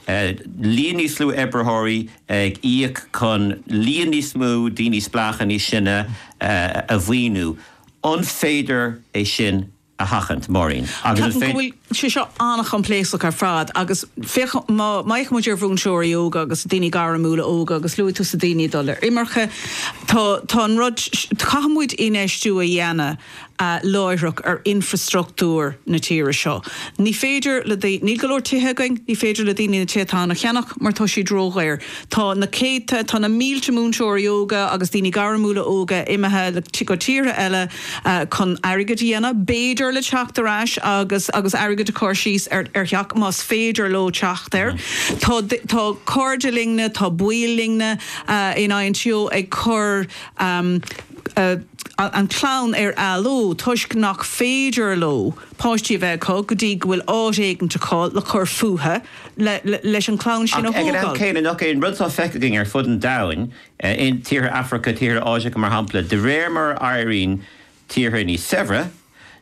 líon níos lú oibritheoirí ag íoc chun líon níos mó daoine spleácha níos sine a mhaoiniú. An féidir é sin a sheachaint, Máirín? Ceapaim go bhfuil sé seo an-choimpléascach ar fad agus féach, má fhéachann muid ar mhúinteoirí óga agus daoine gairmiúla óga, agus luaigh tusa daoine ag dul ar imirce, tá tá an rud, caithfidh muid infheistiú a dhéanamh. láithreach ar infreastruchtúr na tíre seo. Ní féidir le daoine, níl go leor tithe againn, ní féidir le daoine na tithe atá ann a cheannach mar tá siad ródhaor. Tá na céadta, tá na mílte múinteoirí óga agus daoine gairmiúla óga imithe go tíortha eile chun airgead a dhéanamh, b'fhéidir le teacht ar ais agus airgead a chur síos ar theach más féidir leo teacht air. Tá tá cairde linne, tá baill linne in san INTO ag cur. an chlann ar athló toisc nach féidir leo páistí a bheith acu go dtí go bhfuil áit éicint acu le cur fúthu leis an chlann sin a thógáil. Ach ag an am céanna, nach é an rud atá feicthe againn ar fud an domhain, in, tíortha Afraice, tíortha Áiseacha mar shampla, de réir mar a éiríonn tíortha níos saibhre,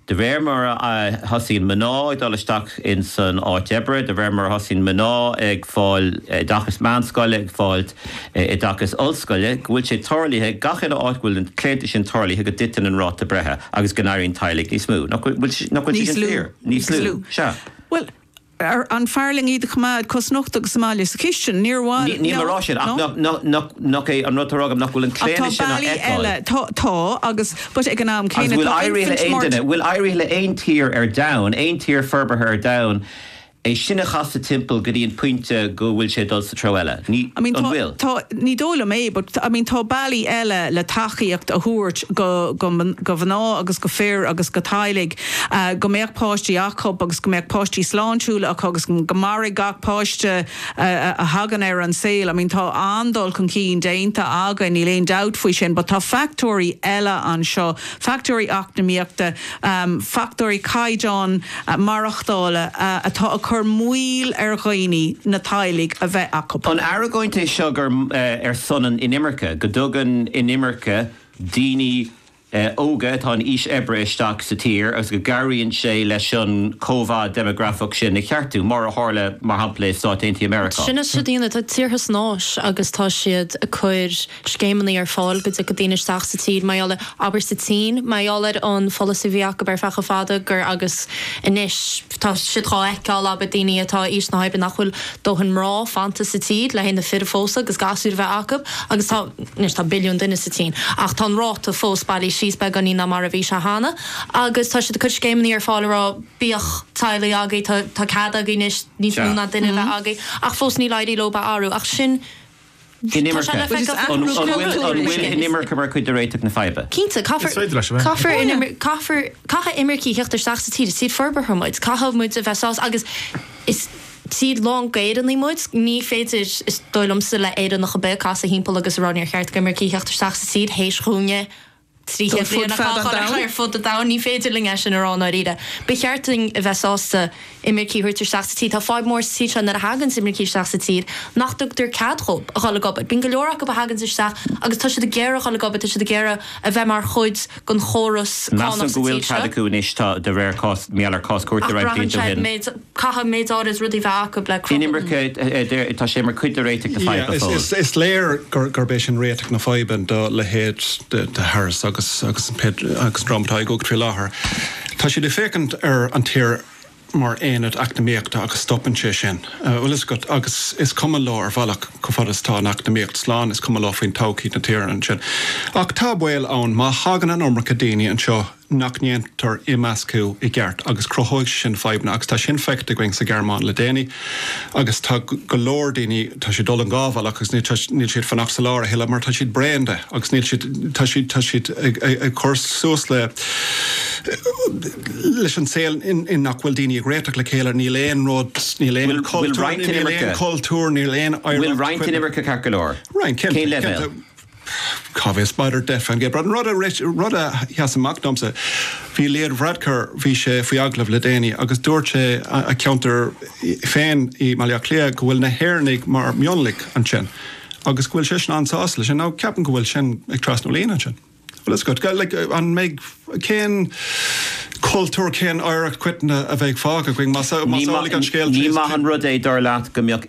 de réir mar a thosaíonn mná ag dul isteach ins an áit oibre, de réir mar a thosaíonn mná ag fáil oideachais meánscoile, ag fáil oideachais ollscoile, go bhfuil sé tarlaithe gach uile áit go bhfuil an claonadh sin tarlaithe go dtiteann an ráta breithe agus go n-éiríonn teaghlaigh níos mó. Nach bhfuil sé sin fíor? Níos lú. Níos lú. Sea. Bhuel. an fearr linn iad a choimeád cosnochta agus sa bhaile, sa chistin, níor mhaith leo. Níl mé a rá sin, ach nach é an rud atá á rá agam nach bhfuil an claonadh sin á fheiceáil? Tá, tá, agus, but ag an am céanna, tá infant mortality. Agus bhfuil éirithe le haon duine, bhfuil éirithe le haon tír ar domhan, aon tír forbartha ar domhan, é sin a chasadh timpeall go dtí an pointe go bhfuil sé ag dul sa treo eile? Ní, an bhfuil? Tá, ní dóigh liom é, but, I mean, tá bealaí eile le tacaíocht a thabhairt go, go, go mná agus go fir agus go teaghlaigh go mbeadh páistí acu agus go mbeadh páistí sláintiúla acu agus go mairfeadh gach páiste a thagann ar an saol. I mean tá an-dul chun cinn déanta againn, níl aon dabht faoi sin, but tá factóirí eile anseo, factóirí eacnamaíochta, factóirí caighdeáin maireachtála atá ag cur moill ar dhaoine na teaghlaigh a bheith acu. An argóint é seo ar son na hinimirce, go dtugann inimirce daoine óga atá in aois oibre isteach sa tír agus go gcabhraíonn sé leis an chóimheá deimeagrafach sin a cheartú, mar a tharla, mar shampla, i Stáit Aontaithe Mheiriceá. Sin é, tá tíortha san Áis agus tá siad ag cur scéimeanna ar fáil go dtiocfadh daoine isteach sa tír, mar gheall ar, abair, sa tSín, mar gheall ar an pholasaí a bhí acu ar feadh chomh fada gur agus anois. Tá siad dhá fheiceáil, abair, daoine atá aois na hoibre nach bhfuil dóthain mná fanta sa tír le haghaidh na fir a phósadh agus gasúir a bheith acu agus tá, anois tá billiún duine sa tSín ach tá an ráta fós bailithe síos beagáinín ná mar a bhí sé cheana agus tá siad ag cur scéimeannaí ar fáil a rá bíodh teaghlaigh agaibh, tá cead agaibh anois níos mó ná duine a bheith agaibh ach fós níl ag éirí leo a athrú ach sin. inimirce mar chuid de réiteach na faidhbe? Cinnte, caithfear imircigh a theacht isteach sa tír, is tír forbartha muid, caithfidh muid a bheith sásta agus is tír lán d'Éireannaigh muid, ní féidir, is dóigh liomsa, le Éireannach ar bith casadh thimpeall agus a rá níor cheart d'imircigh theacht isteach sa tír tar éis dhúinne trí chéad bliain a chaitheamh ar ar fud an domhain, ní féidir linn é sin a rá i ndáiríre. Ba cheart dúinn a bheith sásta imircigh a thabhairt isteach sa tír. Tá fadhb mór sa tír seo nuair a thaganns imircigh isteach sa tír nach dtugtar cead dhóibh a dhul ag obair. Bíonn go leor acu a thaganns isteach agus tá siad ag iarraidh a dhul ag obair, tá siad ag iarraidh a bheith mar chuid den chóras cánach sa tír seo. Measaim go bhfuil cead acu anois, tá, de réir cás, mar gheall ar cás cúirte roinnt blianta ó shin. Caithfidh mé dul agus rudaí bheith acu le cruthú an. Inimirce, tá sé mar chuid de réiteach na faidhbe go fóill. Is léir gurb é sin réiteach na faidhbe do leithéid de Harris agus an dream atá i gcumhacht faoi láthair. Tá siad ag féachaint ar an tír mar aonad eacnamaíochta agus stopann sé ansin. Bhuel, tá a fhios agat agus is cuma leo ar bhealach cá fad is atá an eacnamaíocht slán, is cuma leo faoin todhchaí na tíre ansin. Ach tá baol ann má thagann an iomarca daoine anseo, nach ndéantar imeascadh i gceart agus cruthóidh sé sin fadhbanna agus tá sin feicthe againn sa Ghearmáin le déanaí agus tá go leor daoine, tá siad ag dul in dhá bhealach agus níl siad ag fanacht sa lár a thuilleadh mar tá siad bréan de agus níl siad, tá siad, tá siad ag cur suas le, leis an saol in nach bhfuil daoine ag réiteach le chéile, níl aon rud, níl aon cultúr, níl aon chultúr, níl aon oidhreacht, bhuel roinnt inimirce ceart go leor, roinnt, cén leibhéal? Cá bhfios, b'fhéidir an rud a rith, rud a sheas amach domsa. Bhí Leo Varadkar, bhí sé faoi agallamh le déanaí agus dúirt sé a cheantar féin i mBaile Átha Cliath go bhfuil na hÉireannaigh mar mhionlach ansin agus go bhfuil seisean an-sásta leis sin. Now ceapaim go bhfuil sin ag trasnú líne ansin. Well that's good. Like an mbeidh, cén cultúr, cén oidhreacht coiteann a bheidh fágtha againn más amhlaidh an scéal? Ní maith an rud é dar leat go mbeadh